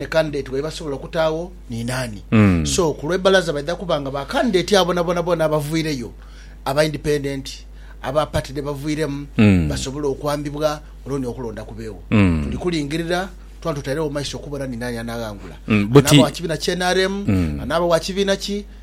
ni candidate waibwe asobola okutaagho ni naani. So ku lwe Balaza baidha kuba nga ba candidate abo bonabona bona abavwireyo, aba independent, aba party dhe bavwiremu basobole okwambibwa olwo ni okulonda kubeegho. Tuli kulingirira twona tutairegho mu maiso okubona ni naani anaaghangula. Anaaba wa kibiina kya nrm, anaaba wa kibiina ki.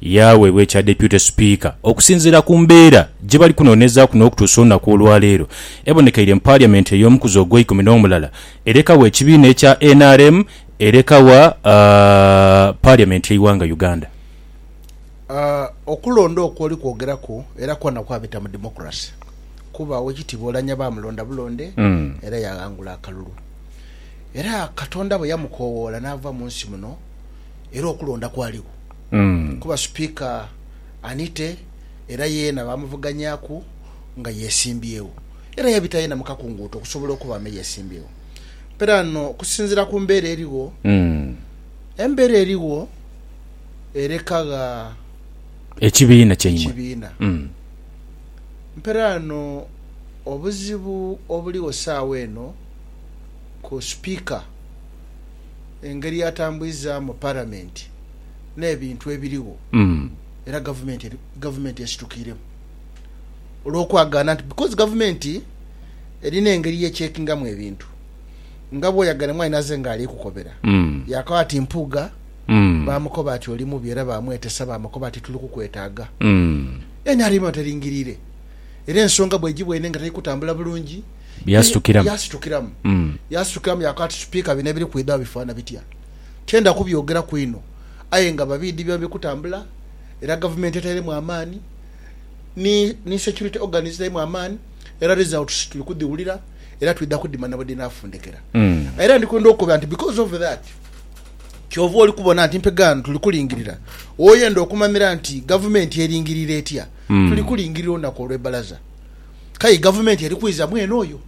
Yaaweebwa ekya Deputy Speaker okusinziira ku mbeera gye bali kunoonezaaku n'okutuusa olunaku olwaleero ebonekeire mu parliament ey'omukuzi ogweikumi n'omulala erekagho ekibiina ekya nrm erekagha parliament y'eighanga Uganda. Okulonda okwo oli kwogeraku era kwona kwabita mu democracy kuba Owekitiibwa Oulanyah baamulonda bulonde era yaghangula akalulu. Era Katonda bwe yamukoowoola n'ava mu nsi muno era okulonda kwaligho. kuba Sipiika Anite era yeena baamuvuganyaku nga yeesimbyewo era yabita yeena mu kakunguuto okusobola okuba ame yeesimbyewo. Mperaano okusinziira ku mbeera erigho, embeera erigho ereka gha ekibiina. Mperaano obuzibu obuligho saawa eno ku Sipiika. engeri atambwizaamu Palamenti n'ebintu ebirigho era Gavumenti esitukiiremu olw'okwagaana nti because Gavumenti erina engeri ye checkingamu ebintu nga bw'oyagala emwaanhi naze nga ali kukobera yaakagho ati Mpuuga baamukoba ati oli mubi era baamwetesa baamukoba ati tuli kukwetaaga nrm aba teringiriire era ensonga bw'egibwa eno nga teri kutambula bulungi. Bye yasitukiramu. Bye yasitukiramu. Yasitukiramu yaakoba ati, Sipiika, bino ebiri kwidha bifaanha bitya? Tienda kubyogeraku inho, aye nga babiidhi biba biri kutambula, era gavumenti etairemu amaani, ni, ni security organs dhitairemu amaani, era results tuli kudhiwulira, era twidha kudhimanya bwe dhinaafundikira. Era ndi kwenda okukobera nti, because of that, kyova oli kubona nti mpegaano tuli kulingirira. Oyenda okumamira nti gavumenti eringirira etya, tuli kulingirira olunaku olw'ebbalaza. K'aye Gavumenti eri kwiza mwene oyo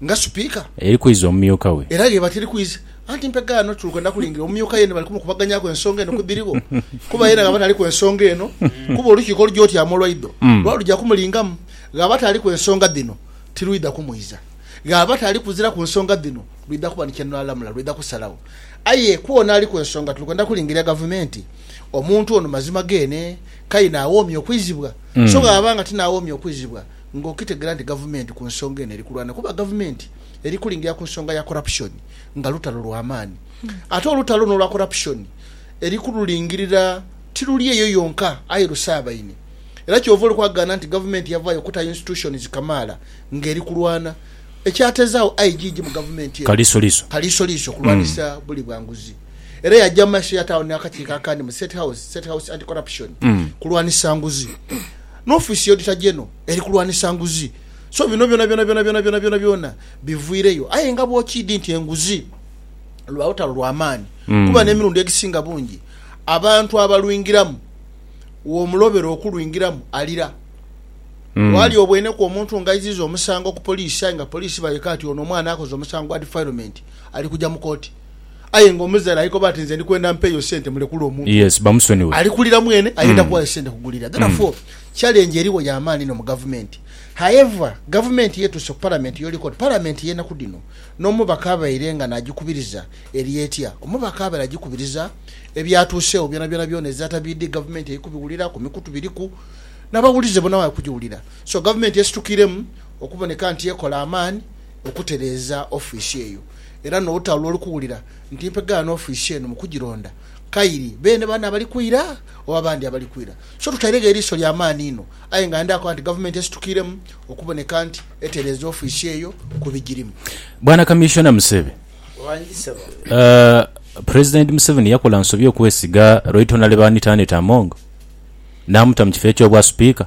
nga Sipiika. Eri kwiza omumyuka we. Era gh'eba teri kwiza. Anti mpegho ano tuli kwenda kulingirira omumyuka yeene bali kumukubaganyaku ensonga eno ku dhirigho, kuba yeene gh'aba taliku ensonga eno, kuba olukiiko olugya otyaama olwaido lwaba lugya kumulingamu, gh'aba ataliku ensonga dhino tirwidha kumwiza. Gh'aba atali kuziraku nsonga dhino lwidha kuba ni kye lulalamula, lwidha kusalagho. Aye kw'ono aliku ensonga tuli kwenda kulingirira Gavumenti, omuntu ono mazima geene k'aye n'awoomya okwizibwa. So bw'aba nga tinaawoomye okwizibwa, ng'okitegera nti gavumenti ku nsonga eno eri kulwana kuba gavumenti eri kulingira ku nsonga ya korapusoni nga lutalo lwa maani. Ate olutalo luno olwa korapusoni eri kululingirira tiruli eyo yonka aye lusaabaine era ky'ova olikwagaana nti gavumenti yavaayo kuta yinstitushonizi kamaala ng'eri kulwana ekyateezaawo aigigi mu gavumenti eno Kalisoliiso okulwanisa buli bwa nguzi. era yaja mu maiso ya tawuni n'akakiiko akandi mu State House, State House Anti-Corruption, kulwanisa nguzi, n'ofiisi y'Auditor General eri kulwanisa nguzi. So bino byonabyonabyonabyonabyonabyona biviireyo. Aye nga bw'okiidhi nti enguzi lwa lutalo lwa maani kuba n'emirundi egisinga bungi abantu abalwingiramu w'omulobera okulwingiramu alira. Waali obweneku omuntu ng'aiziiza omusango ku poliisi aye nga poliisi bayoka nti ono omwana akoze omusango gwa defilement ali kuja mu kooti. Aye nga omuzaire ali koba ati nze ndi kwenda mpe yo sente mulekule omuntu oyo. Yes bamusonyiwe. Ali kulira mwene ayenda kuwayo sente kugulira. Therefore challenge eriwo ya maani inho mu gavumenti. However gavumenti yetuuse ku palamenti yoli koti palamenti yenaku dhino n'omubaka abaire nga nagikubiriza eri etya? Omubaka abaire agikubiriza ebyatuusewo byonabyona byona ezata BD gavumenti eri kubiwulira ku mikutu biriku n'abawulize bona bali kugiwulira. So gavumenti esitukiremu okuboneka nti ekola amaani. okutereeza ofiisi eyo era n'otaula oli kuwulira nti mpegaano ofiisi eno mu kugironda, kairi beene bano abali kwira oba abandi abali kwira. So tutairegho eriiso lya maani inho, aye nga ndha koba nti Gavumenti esitukiiremu okuboneka nti etereeza ofiisi eyo ku bigirimu. Bwana Kamissiona Musebe, President Museveni yakola nsobi okwesiga Right Honourable Anita Annet Among n'amuta mu kifo eky'obwa Sipiika.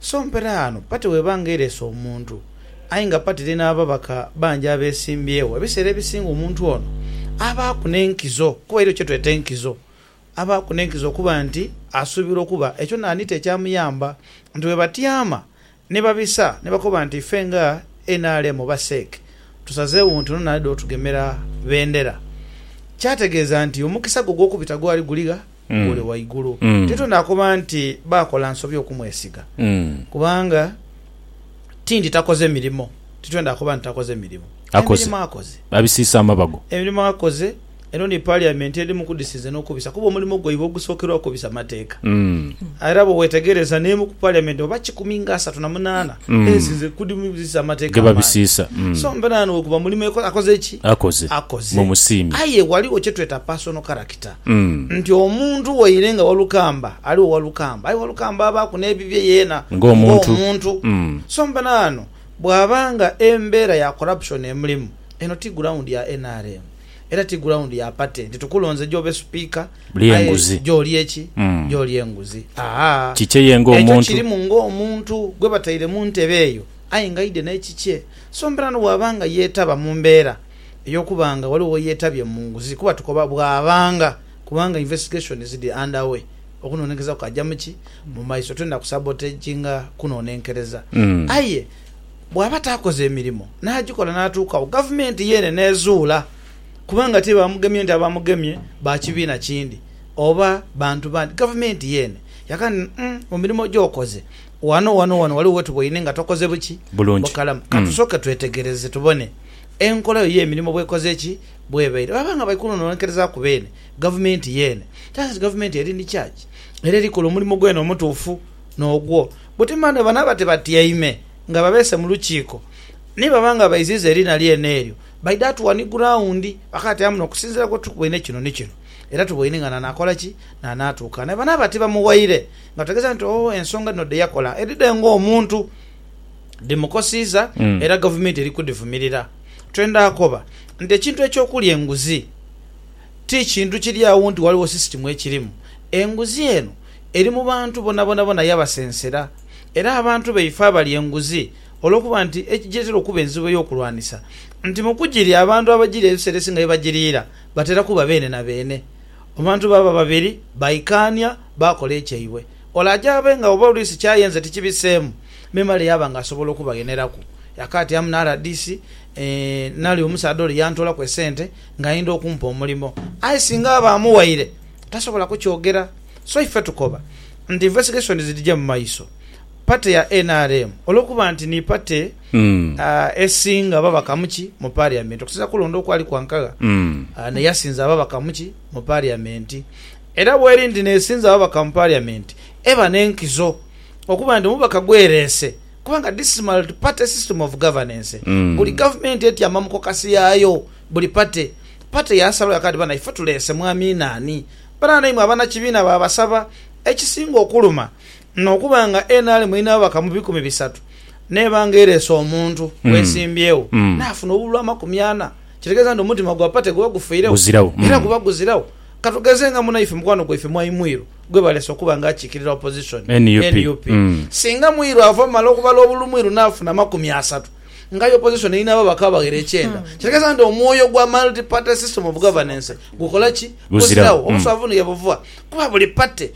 So mpela ghano pati bw'eba nga eleese omuntu, aye nga pati eli n'ababaka bangi abeesimbyewo, ebiseera ebisinga omuntu ono abaaku n'enkizo, kuba eliyo kye tweta enkizo, abaaku n'enkizo okuba nti asuubirwa okuba ekyo naanite ekyamuyamba nti bwe batyama ni babisa ni bakoba nti ife nga nrm oba CEC tusazeewo nti ono naidha otugemera bendera, kyategeeza nti omukisa gwe ogw'okubita gwali guli gha? ole waigulu. Tito naakoba nti baakola nsobi okumwesiga, kubanga tindi takoze mirimo. Tito naakoba nti takoze mirimo. Akoze. Emirimo akoze. Abisiisa amabago. Emirimo akoze. Eno ni Paliyamenti edhimu ku dhisinze n'okubisa kuba omulimo gwaibwe ogusookerwaku kubisa mateeka. Era bwe weetegereza n'emu ku Paliyamenti oba kikumi nga asatu na munaana esinze ku dhimu dhisiisa amateeka amaangi. Ge babisiisa. So mberaano bwe guba mulimo akoze ki? Akoze. Akoze. Mumusiime. Aye ghaligho kye tweta personal character. Peter nti, Omuntu waire nga Walukamba aligho Walukamba, aye Walukamba abaaku n'ebibye yeena ng'omuntu. So mbona ghano bwaba nga embeera ya corruption emulimu, eno ti ground ya nrm era ti ground ya party nti tukulonze gy'obe Sipiika aye gy'olye ki? Gy'olye nguzi. Ahaa! Ekyo kirimu ng'omuntu gwe bataire mu ntebe eyo aye ng'aidhe n'ekikye. So mbona ghano bwaba nga yeetaba mu mbeera. ey'okuba nga ghaligho yetabye mu nguzi kuba tukoba bwabanga kubanga investigations dhiri under way okunonenkereza kukaja mu ki mu maiso twenda ku sabotaginga kunonenkereza aye bwaba takoze emirimo nagikola natuukagho gavumenti yeene nezuula kuba nga ti bamugemye nti abamugemye ba kibiina kindi oba bantu bandi gavumenti yeene yaka nti umm mu mirimo gyokoze wano wano wano ghaligho wetuboine nga tokoze buki? Bulungi. Bukalamu. Katusoke twetegereze tubone Enkola yo y'emirimo bw'ekoze ki? Bw'ebaire. Baba nga bali kunononkerezaaku beene, gavumenti yeene. That is, gavumenti eri ni charge, era eri kola omulimo gweene omutuufu n'ogwo. Buti mani banaaba tibatyaime nga babeese mu lukiiko, ni baba nga baiziiza eriina lyeene eryo, baidha atuwa ni gurawundi bakatyamu n'okusinziira ku tuboine kino ni kino, era tuboine nga n'anaakola ki? N'anaatuuka. Nae banaaba tibamuwaire, nga tutegeeza nti, Oh, ensonga dhino dhe yakola edhidhe ng'omuntu. dhimukosiiza era Gavumenti eri kudhivumirira. Twendha akoba nti ekintu eky'okulya enguzi ti kintu kiri agho nti ghaligho sisitimu ekirimu. Enguzi eno eri mu bantu bonabonabona yabasensera era abantu baife abalya enguzi olw'okuba nti ekigireetera okuba enzibu ey'okulwanisa nti mu kugirya abantu abagirya ebiseera ebisinga ye bagiriira batera kuba beene na beene. Abantu baba babiri baikaania baakola ekyaibwe. Ole aja abe nga oba olwisi ky'ayenze tikibiseemu, memale yaaba nga asobola okubagheneraku. Yakaatyamu na rdc, Nali omusaadha ole yantoolaku esente ng'ayenda okumpa omulimo. Aye singa aba amuwaire, tasobola kukyogera. So ife tukoba nti investigations dhije mu maiso. Party ya nrm olw'okuba nti ni party esinga babaka mu ki mu Parliament okusinziira ku kulonda okwali kwa Nkagha, n'eyasinza ababaka mu ki mu Parliament. Era bweri nti nesinza ababaka mu parliament eba nenkizo okuba nti omubaka gwerese kubanga this is multi party system of governance buli gavumenti etyama mu kokasi yayo buli party party yasalawo yakala nti bana ife tulese mwami nani banana imwe abanakibiina babasaba ekisinga okuluma N'okuba nga NRM erina ababaka mu bikumi bisatu n'eba nga ereese omuntu gwesimbyewo n'afuna obululu amakumi ana, kitegeeza nti omutima gwa pate guba gufiiregho? Era guba guziragho. Ka tugeze nga munaife mukwano gwaife Mwaimwiru gwe baleese okuba nga akiikirira opozisoni, nup. Singa Mwiru ava mu mala okubala obululu Mwiru n'afuna amakumi asatu, ng'aye opozisoni erina ababaka abaghera ekyenda, kitegeeza nti omwoyo gwa Multi Party System of Governance gukola ki? Guziragho. Obuswavu ni ghe buva kuba buli pate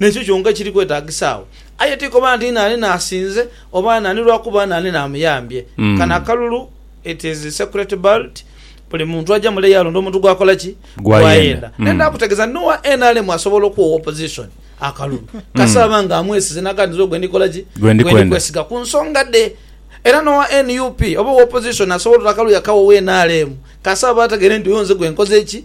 N'ekyo kyonka kiri kwetaagisa agho. Aye ti koba nti naani n'asinze, oba naani lwa kuba naani n'amuyambye. Kano akalulu, it is secret ballot, buli muntu aja mule yaalonda omuntu gw'akola ki? Gw'ayenda. Naye ndaakutegeeza nti n'owa nrm asobola okuwa owa opposition akalulu, kasita aba nga amwesize n'aga nti nze ogwe ndikola ki? Gwe ndi kwesiga ku nsonga dhe. Era n'owa nup oba owa opposition asobola oti akalulu yakawa owa nrm kasita aba ategeire nti oyo nze gwe nkoze ki?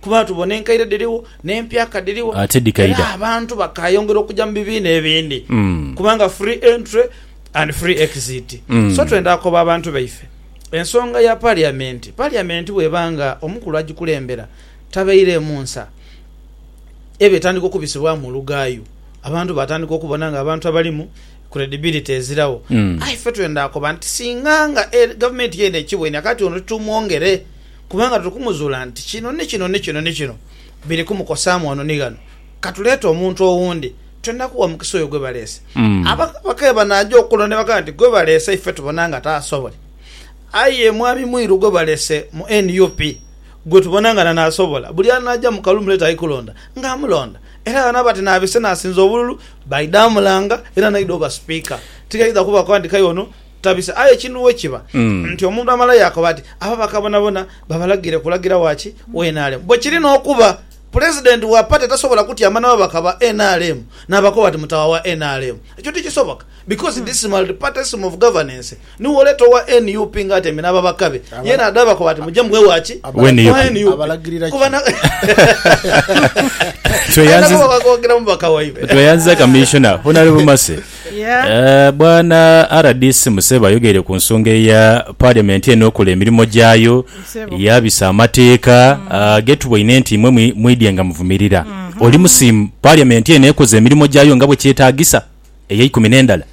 Kuba tubona enkaire dhirigho, n'empya ka dhirigho, era abantu bakaayongera okuja mu bibiina ebindi, kubanga free entry and free exit. So twenda koba abantu baife ensonga ya Paliamenti. Paliamenti bw'eba nga omukulu agikulembera tabaireemu nsa, eba etandika okubisibwamu olugaayu, abantu baatandika okubona nga abantu abalimu credibility eziragho. Aye ffe twenda koba nti singa nga Gavumenti yeene ekibwenia, kaati ono titumwongere. Kubanga tuli kumuzuula nti kino ni kino ni kino ni kino biri kumukosaamu ghano ni ghano, ka tuleete omuntu owundi, twendha kuwa mukisa oyo gwe baleese. Abakabaka bwebanaaja okulonda ni bagamba nti, Gwe baleese ife tubona nga taasobole. Aye Mwami Mwiru gwe baleese mu nup gwe tubona nga n'anaasobola. Buli anaaja mu kalulu muleete ali kulonda nga amulonda. Era bano abati n'abeese n'asinza obululu baidha mulanga era n'aidha oba Sipiika. Tigaidha kuba ku andikayo ono. tabisa. Aye kinu we kiba nti omuntu amala yaakoba ati, abo bakabonabona babalagire kulagira wa ki? Wa nrm. Bwe kiri n'okuba Pulezidenti wa pate tasobola kutyama na babaka ba nrm n'abakoba ati mutawa wa nrm. Ekyo tikisoboka because this multiparty system of governance niwo oleeta owa nup ng'atyamye n'ababaka be ye n'adhabakoba ati muje mube wa ki? Wa nup. Abalagirira ki? Kuba na Tweyanziza- Aye nabo bakogira mubaka waibwe. tweyanziza Kamiishona Honarebo Mercy. Bwana rdc Museba ayogeire ku nsonga eya Parliament eno okola emirimo gyayo yabisa amateeka ge tuboine nti imwe mwidye nga muvumirira. Oli musiimu Parliament eno ekoze emirimo gyayo nga bwe kyetagisa eyeikumi n'endala?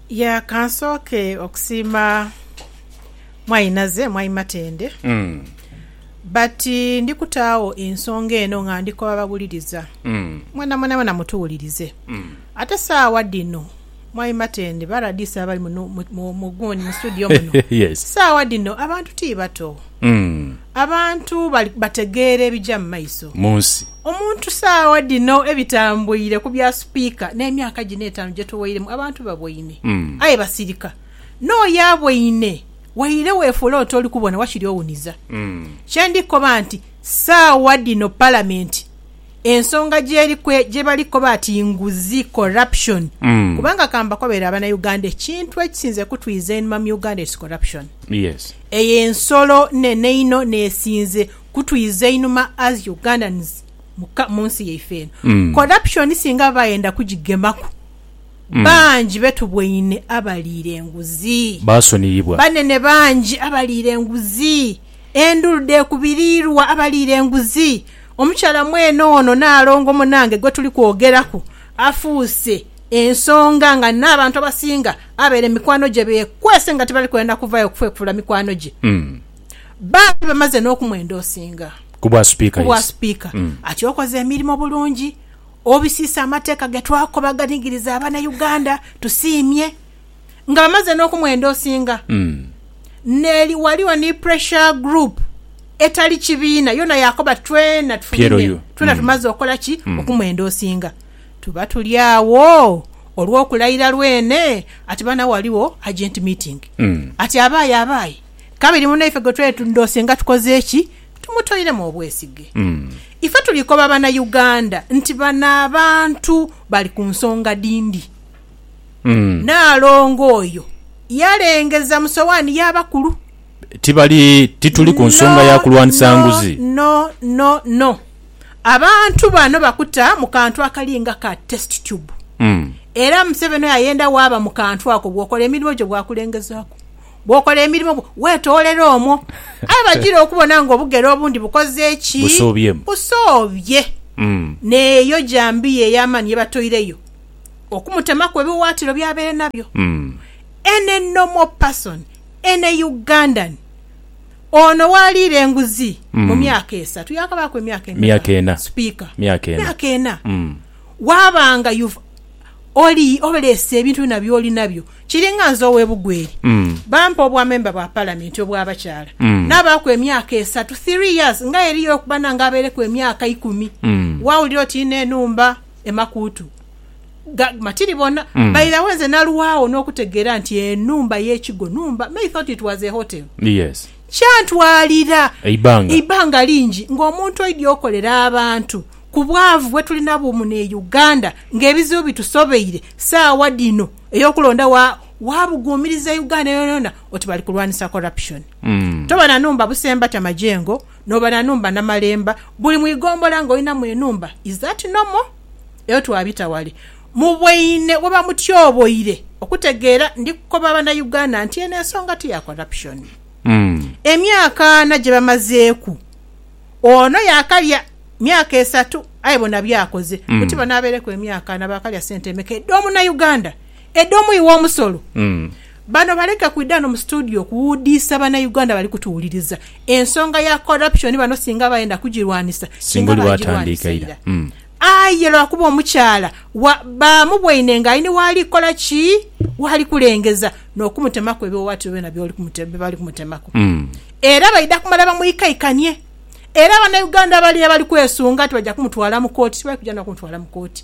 Ya kansooke okusiima Mwainaze, Mwai Matende but ndi kutaagho ensonga eno nga ndi ku babawuliriza. Mwenamwenamwena mutuwulirize. Ate saawa dhino, Mwami Matende, ba RDC abali muno mu gundi mu studio muno, saawa dhino abantu ti bato. Abantu bategeera ebija mu maiso mu nsi. Omuntu saawa dhino ebitambuire ku bya Sipiika n'emyaka gino etaanu gye tuweiremu, abantu baboine aye basirika. N'oyo aboine waire weefuula oti oli kubona wakiri owuniza. Kye ndi kukoba nti saawa dhino Palamenti ensonga gyeri kwe gyebali koba ati nguzi, corruption, kubanga kambakobere abana Uganda ekintu ekisinze kutwiiza enhuma mu Uganda it's corruption. Yes. Eyo ensolo nene inho nesinze kutwiiza einhuma as Ugandans mu ka munsi yaife eno. Corruption singa baba bayenda kugigemaku bangi betubweine abaliira enguzi. Basoniyibwa. Banene bangi abaliira enguzi. Endhulu dheekubiriirwa abaliira enguzi. Omukyala mwene ono Naalongo munange gwe tuli kwogeraku afuuse ensonga nga n'abantu abasinga abaire mikwano gye beekwese nga tibali kwenda kuvayo kufwefuula mikwano gye. Baali bamaze n'okumwenda osinga Ku bwa sipiika, ku bwa yes. sipiika. Mm. Ati okoze emirimo bulungi, obisiisa amateeka ge twakoba aganigiriza Abanauganda. Tusiimye. nga bamaze n'okumwendosinga n'eri waliwo ni pressure group etali kibiina yona yakoba twena tufumineku twena tumaze okola ki okumwendosinga tuba tuli agho olw'okulayira lwene ati bana waliwo urgent meeting ati abaaye abaaye kabiri munaife gwetwendosinga tukoze ki tumutoiremu obwesige ife tuli koba bana Uganda nti bano abantu bali ku nsonga dhindi. Nnaalongo oyo yalengeza mu sowaani y'abakulu. Tibali, tituli ku nsonga ya kulwanisa nguzi. No, no, no, no. Abantu bano bakuta mu kantu akali nga ka test tube. Era Museveni oyo ayenda waaba mu kantu ako, bw'okola emirimo gyo bwakulengezaaku. Bw'okola emirimo bwo, weetoolera omwo. Aye bagira okubona ng'obugere obundi bukoze ki? Busoobyemu. Busoobye. N'eyo jambiya ey'amaani ye batoireyo. okumutemaku ebiwaatiro by'abaire nabyo. Any normal person, any Ugandan, ono waaliira enguzi mu myaka esatu, yaakabaaku emyaka emeka Sipiika? Myaka ena. Waaba nga you've oli, oleese ebintu byona by'oli nabyo, kiringa nze ow'e Bugweri, bampa obwamemba bwa Palamenti obw'abakyala, naabaaku emyaka esatu, three years, ng'aye eriyo okuba nange abaireku emyaka ikumi, waawulira oti inho enhumba. emakuutu ga matiri bona mm. bairawo nze nalwawo n'okutegeera nti enumba y'ekigo numba may thought it was a hotel yes kyantwalira eibanga eibanga lingi ng'omuntu oidi okolera abantu ku bwavu bwe tulina bumu ne uganda ng'ebizibu bitusobeire saawa dino ey'okulonda wa wabuguumiriza uganda yonayona oti bali kulwanisa corruption mm. tobona numba busembata majengo Noba na nhumba Namalemba. Buli mu igombola nga olinamu enhumba is that normal? Eyo twabita wale. Mubweine webamutyoboire okutegeera ndi kukoba bana Uganda nti eno ensonga ti ya corruption. Emyaka ana gyebamazeeku ono yakalya myaka esatu aye bona byakoze. Buti bano abaireku emyaka ana bakalya sente emeka edho muna Uganda? Edomu iwe omusolo. Bano baleke kwidha no mu studio kuwudiisa bana Uganda bali kutuwuliriza. Ensonga ya corruption bano singa bayenda kugirwanisa singa baagirwanisa ira. Aye lwakuba omukyala wa baamubwaine nga aine waali kukola ki? Waali kulengeza n'okumutemaku ebiwawaatiro byona byoli kumute bye bali kumutemaku. Era baidha kumala bamwikaikanie. Era Banauganda bali abali kwesunga nti baja kumutwala mu kooti tibali kuja na kumutwala mu kooti.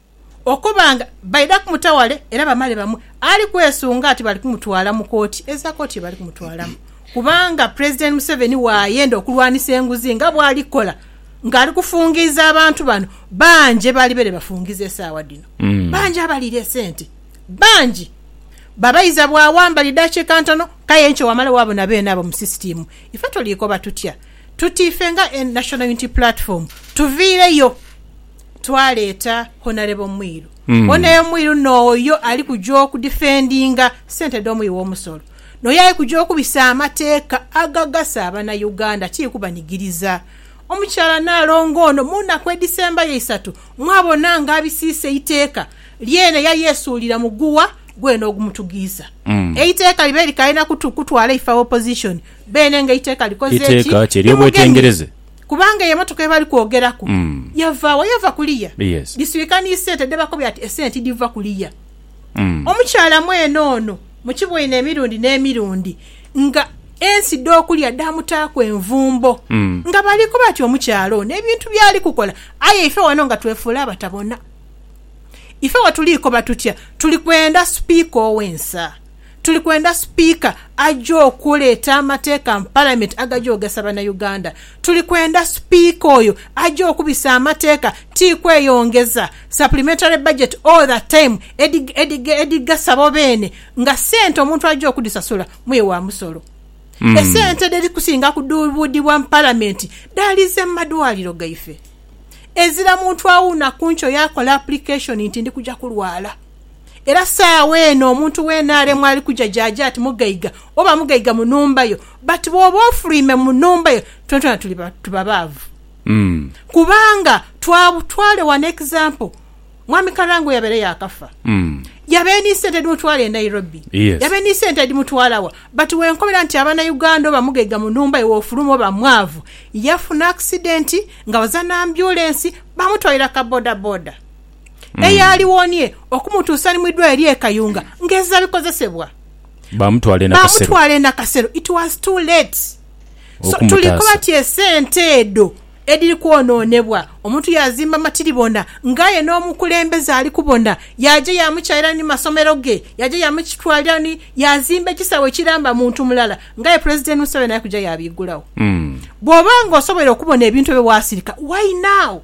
okuba nga baidha kumuta ghale era bamale bamwe, ali kwesunga nti bali kumutwala mu kooti eza kooti ye bali kumutwalamu kubanga Pulezidenti Museveni waayenda okulwanisa enguzi nga bwali kukola ng'ali kufungiiza abantu bano. Bangi ebalibere bafungiza esaawa dhino bangi abaliire esente bangi babaiza bwa wambali dakiika ntono k'aye enkya wamala waabona beene abo mu sisitiimu. Ife tuliikoba tutya tuti ife nga National Unity Platform tuviireyo? twaleeta Honarebo Mwiru. Mm. Honarebo Mwiru nooyo ali kuja okudifendinga sente dh'omuwi w'omusolo. Nooyo ali kuja okubisa amateeka agagasa Abanauganda tili kubanigiriza. Omukyala Naalongo ono mu naku edhisembayo isatu mwabona nga abisiisa eiteeka lyene yali esuulira muguwa gwene ogumutugiisa. Mm. Eiteeka libaire likalina kutu kutwala ife Abaopposition beene nga eiteeka likoze ki? Iteeka ki? Ery'obwetengereze? kubanga eyo emotoka yebali kwogeraku mm. yava wa? Yava kuliya yes. Disirika ni sente dhebakobye ati esente tidhiva kuliya mm. Omukyala mwene ono mukiboine emirundi n'emirundi nga ensi dhokulya dhamutaaku envumbo mm. nga bali kuba ati omukyala ono ebintu byali kukola aye ife wano nga twefuula abatabona ife wetuli koba tutya tuli kwenda sipiika owensa Tuli kwenda Sipiika aje okuleeta amateeka mu Palamenti agaja ogasa Banauganda. Tuli kwenda Sipiika oyo aje okubisa amateeka, ti kweyongeza supplementary budget all the time edhigasa bo beene nga sente omuntu aja okudhisasula muye wa musolo. Esente edhiri kusinga kudhuubuudhibwa mu Palamenti dhaalize mu madwaliro gaife. Ezira muntu awuuna ku nkyo yaakola application nti ndi kuja kulwala. Era saagho eno omuntu weena alemwa ali kuja gy'aja ati mugaiga, oba mugaiga mu nhumba yo. But bw'oba ofuluime mu nhumba yo, twonatwona tuli ba, tuba baavu. Kubanga, twa, twale wano example, Mwami Karangwe yabaire yaakafa. Yabaire ni sente edhimutwala e Nairobi. Yes. Yabaire ni sente edhimutwala wa? But wenkobera nti Abanauganda oba mugaiga mu nhumba yo w'ofuluma oba mwaavu, yafuna accident nga baza n'ambyulensi, baamutwalira ka bodaboda. eyaaliwonie okumutuusa ni mu idwaliro ly'e Kayunga ng'ezira bikozesebwa Baamutwala e Nakasero. baamutwala e Nakasero it was too late. So tuli Okumutaasa. koba ti esente edho edhiri kwonoonebwa, omuntu yaazimba matiribona ng'aye n'omukulembeze ali kubona, yaaja yaamukyaira ni masomero ge, yaaja yaamukitwalira ni, yaazimba ekisaawe ekiramba muntu mulala ng'aye Pulezidenti Museveni ali kuja yaabiggulawo. Mm. Bw'oba ng'osobwoire okubona ebintu ebyo waasirika, why now?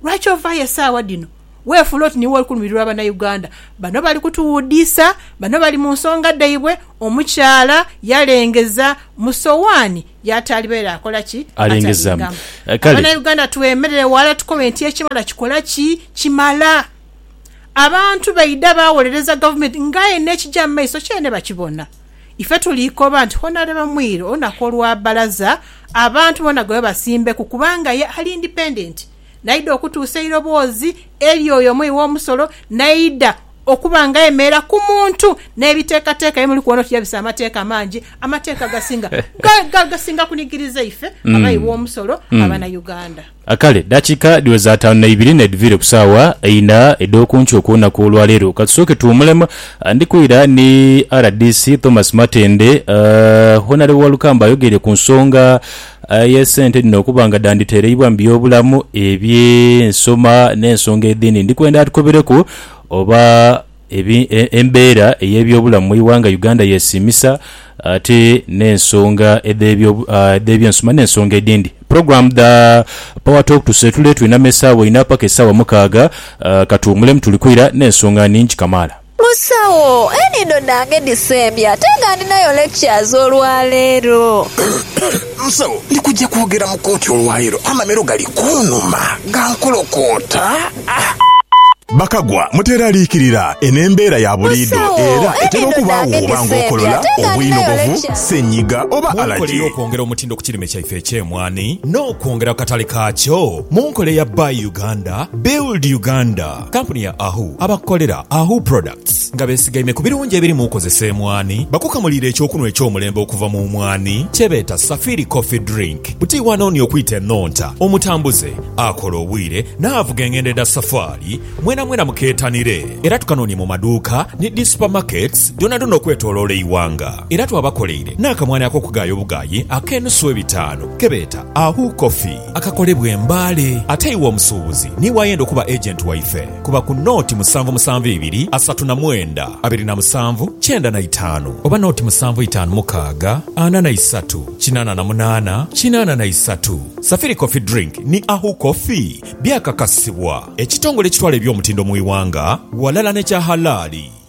Lwaki ovaayo esaawa dhino weefuula oti niiwe oli kulumirirwa Banauganda? Bano bali kutuwudiisa, bano bali mu nsonga dhaibwe, omukyala yalengeza mu sowaani y'ataali baire akola ki? Alengeza. Atalingamu. Kale. Abanauganda twemerere ghala tukobe nti ekimala kikola ki? Kimala. Abantu baidha baawolereza Gavumenti ng'aye n'ekija mu maiso kyene bakibona. Ife tuliikoba nti hona lwe bamwire olunaku olwa bbalaza abantu bona gwe babasimbeku kubanga ye ali indipendenti naidha okutuusa eiroboozi eri oyo omughi w'omusolo naidha okuba nga ayemerera ku muntu n'ebiteekateeka bye muli kubona oti yabisa amateeka amangi amateeka agasinga gasinga kunigiriza ife abaghi b'omusolo Abanauganda. A Kale, eddakiika dhiweza ataanu na ibiri n'edhiviire ku saawa eina edh'oku nkyo ku lunaku olwa leero. Ka tusooke tuwumulemu. Ndi kwira ni rdc Thomas Matende. Honarebo Walukamba ayogeire ku nsonga y'esente dhino okuba nga dhanditereibwa mu by'obulamu, eby'ensoma n'ensonga edhindi. Ndi kwenda atukobereku oba. embeera ey'ebyobulamu mu ighanga Uganda yesiimisa ate n'ensonga edh'ebyensoma n'ensonga edhindi. Program dha Power Talk tuseetule twiname esaawa ina paka esaawa mukaaga katuwumulemu tuli kwira n'ensonga nhingi kamaala. Musawo, enhindo dhange dhisembye ate nga ndhinayo lectures olwaleero. Musawo, ndi kujja kwogera mu kooti olwaleero, amamiro gali kunhuma gankolokoota. Bakagwa muteeraliikirira, eno embeera ya buliidho era etera okubaawo bwoba ng'okolola, obwinogovu, ssenyiga oba Munkola alagi. ey'okwongera omutindo ku kirime kyaife eky'emwani n'okwongera ku katale kaakyo mu nkola eya Buy Uganda, Build Uganda, kkampuni ya Ahu abakukolera Ahu Products, Nga besigaime ku birungi ebiri mu kozesa emwani, bakukamuliire eky'okunhwa eky'omulembe okuva mu mwani kye beeta Safiri Coffee Drink. Buti iwe anoonia okwita enhonta, omutambuze, akola obwire, n'avuga engendo edha safaali, mwenamwena mukeetanire. Era tukanoonie mu maduuka ni dhi supamaketi dhoonadhoona okwetoloola eighanga. Era twabakoleire n'akamwani ak'okugaaya obugaayi ak'enusu ebitaanu ke beeta Ahu Coffee. akakolebwa e Mbale. Ate iwe omusuubuzi niiwe ayenda okuba agent waife, kuba ku nooti musanvu musanvu ibiri asatu na mwenda abiri na musanvu kyenda na itaanu oba nooti musanvu itaanu mukaaga ana na isatu kinaana na munaana kinaana na isatu. Safiri Coffee Drink ni Ahu Coffee byakakasibwa ekitongole ekitwala eby'omutindo mu iwanga ghalala n'ekya halaali.